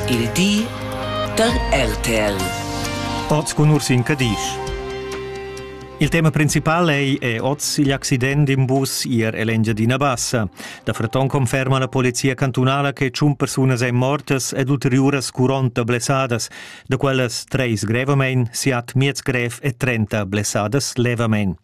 Il di da RTL. Oz cun Ursin Cadisch. Il tema principal ei è oz igl accident d'in bus ier ell'Engiadina Bassa. Da Freton conferma la polizia cantunala che tschun persunas ein mortas ed ulteriuras curonta blessadas, da quellas treis grevamein, siat miez grev e trenta blessadas levamein.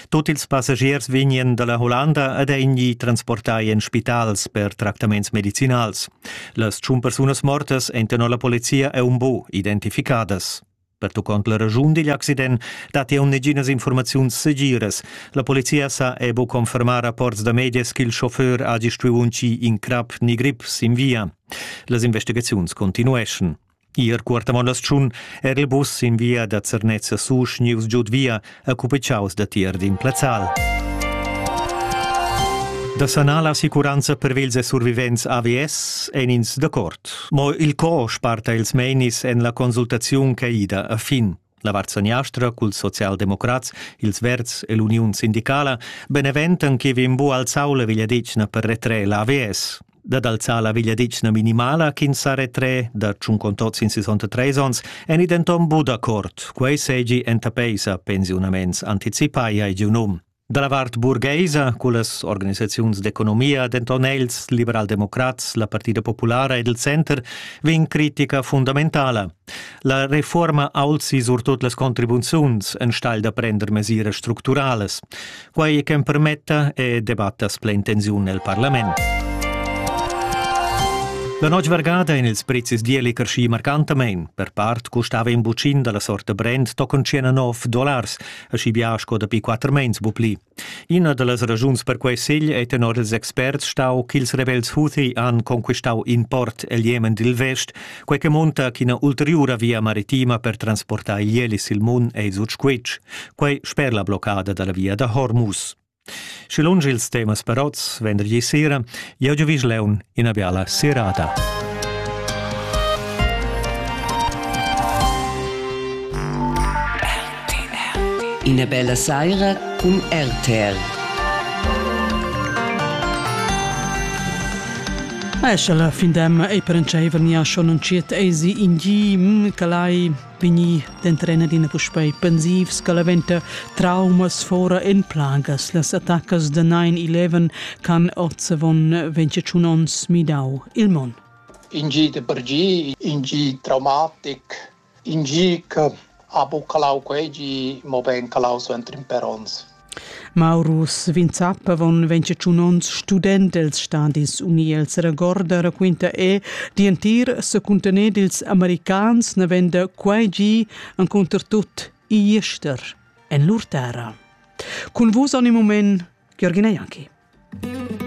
Tut ils passagiers vegnien dalla Hollanda ed ein gli transportai en spitals per tractaments medicinals. Las tschun persunas mortas ein tenor la polizia e un bu identificadas. Pertuccont la regiun digl accident dat jau neginas informaziuns segiras. La polizia sa e bu confermar rapports da medias ch'il chauffeur hagi stuiu uncir in crap ni grip sin via. Las investigaziuns continueschan. Ir Cuortamondas-Tschun era il bus in via da Zernez a Susch gnius giud via a cupichaus da tier d'in plazzal. Da sanar la assicuranza per vils e survivents AVS ein ins d'accord. Mo il co sparta ils meinis en la consultaziun che ida a fin. La vart saniastra culs socialdemocrats, ils Verds e l'Uniun sindicala beneventan che vegn bu alzau la vegliadetgna per retrer l'AVS dad alzar la vegliadetgna minimala ch'ins sa retrer da tschun tots in 63 ons en denton bu d'accord, quei seigi enta peisa pensiunaments anticipai ai giu num. Da la vart burgaisa, cullas organisaziuns d'economia, denton els, liberaldemocrats, la Partida Populara ed il Center, vegn critica fundamentala. La reforma alzi surtut las contribuziuns enstagl da prender mesiras structuralas. Quai che permetta e debattas plein tensiun nel Parlament. La notg vargada in ils prezis dieli carschi marcantamein. Per part custava in bucin dalla sorta brand tochen 19 dollars, aschi bia sco dapi quatter meins bu pli. Ina da las ragiuns per quei segl ei tenor ils experts stau ch'ils rebels Houthi han conquistau in port el Jemen dil vest, quei che monta ch'ina ulteriura via maritima per transportar igl sil Mun ei sut squitsch. Quei sper la bloccada dalla via da Hormuz. Schi lunsch ils temas parots vendergli sera, jeu giuvisch leun ina biala serada. Ina bella saira cun RTR. Eschel fin dem ei perentscheiver nia schon un chiet eisi in gi mm, che lai vegnì d'entrener adina puspei pensivs che la venta traumas fora en plagas. Las attaccas da 9-11 can Ozzavon venture tschun onns midau il mon. In gi de per gi, in gi traumatic, in gi che ha buccalau quei gi, mo ben calau suenter in per ons. Maurus Vinzap avon ventscha tschun onns student els stadis uni els regorda raquinta e dientir secuntener dils americans navenda quai gi encunter tut igl ester en lur terra. Cun vus ogni moment Jürgen Janki.